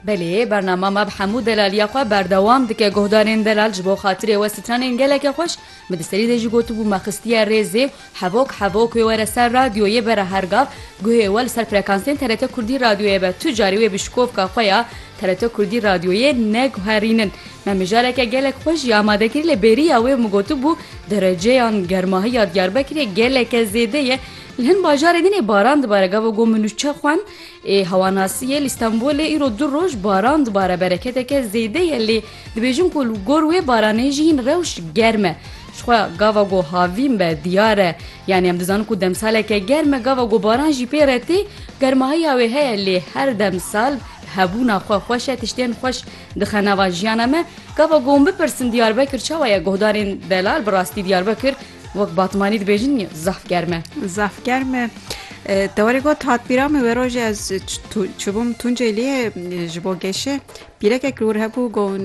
Belê, bernama me bi hemû delaliya xwe berdewam dike guhdarên delal ji bo xatirê we stranên gelekê xweş, min di serî de jî gotibû me xistiye rêzê û hevok hevok wê were ser radyoyê bere her gav guhê we li ser frekansên TRT Kurdî radyoyê be tu carî wê bi şikovka xwe ya TRT Kurdî radyoyê neguherînin me mijareke gelek xwe jî amade kir lê bêriya wê min gotibû dereceyan germahiya Diyarbekirê geleke zêde ye li hin bajarê din ê baran dibare gava got min nûçe xwend Ê hewanasiyê li Stenbolê îro du roj baran dibare bereketeke zêde ye lê dibêjin ku li gor wê baranê jî hin rewş germ e. Jixwe gava ku havîn be diyar e. Yanî em dizanin ku demsaleke germ e gava ku baran jî pê re tê germahiya wê heye lê her demsal hebûna xwe xweş e tiştên xweş dixe nava jiyana me. Gava ku hûn bipirsin Diyarbekir çawa ye guhdarên delal bi rastî Diyarbekir Wek batmanî dibêjin zaf germ e. Zaf germ e. Te werê got hatbîra min wê rojê ez çibûm Tunceliyê ji bo geşê pîrekek li wir hebû gon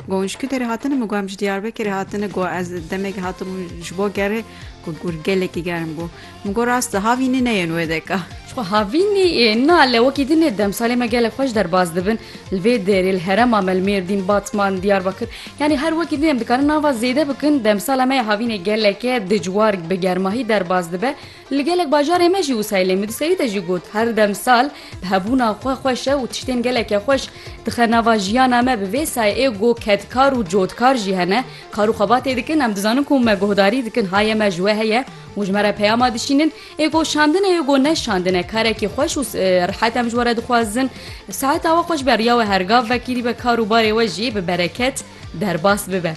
gon ji Kutê re hatine min got em ji Diyarbekirê hatine got ez demekê hatibûm ji bo gerê got gelekî germ bû. Min got rast e, havînî ne yên wê deka. Çku havînî na le wekî din ê demsalê me gelek xweş derbas dibin li vê derê li herema me li Mêrdîn, Batman, Diyarbakir yanî her wekî din em dikarin nava zêde bikin demsala me ya havînê geleke dijwar bi germahî derbas dibe li gelek bajarê me jî wisa ye lê min di serî de jî got her demsal bi hebûna xwe xweş e û tiştên geleke xweş dixe nava jiyana me bi vê sayê ê got kedkar û cotkar jî hene kar û xebatê dikin em dizanin ku me guhdarî dikin haye me ji we heye Û ji me re peyama dişînin, ê ku şandin e ê ku ne şandin e, karekî xweş û rihet em ji we re dixwazin. Saheta we xweş be, riya we her gav vekirî be, kar û barê we jî bi bereket derbas bibe.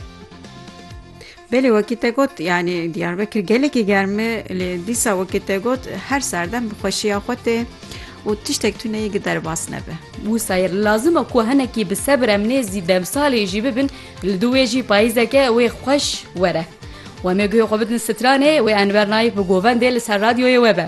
Belê wekî te got yanî Diyarbekir gelekî germ e lê dîsa wekî te got her serdem bi xweşiya xwe tê û tiştek tuneyî giderbas nebe. Wisa ye lazim e ku hinekî bi sebir em nêzî demsalê jî bibin. Li dû wê jî payîzeke wê xweş were. Wemê guhê xwe bidin stranê, wê Enver Naif bi govendê li ser radyoyê we be.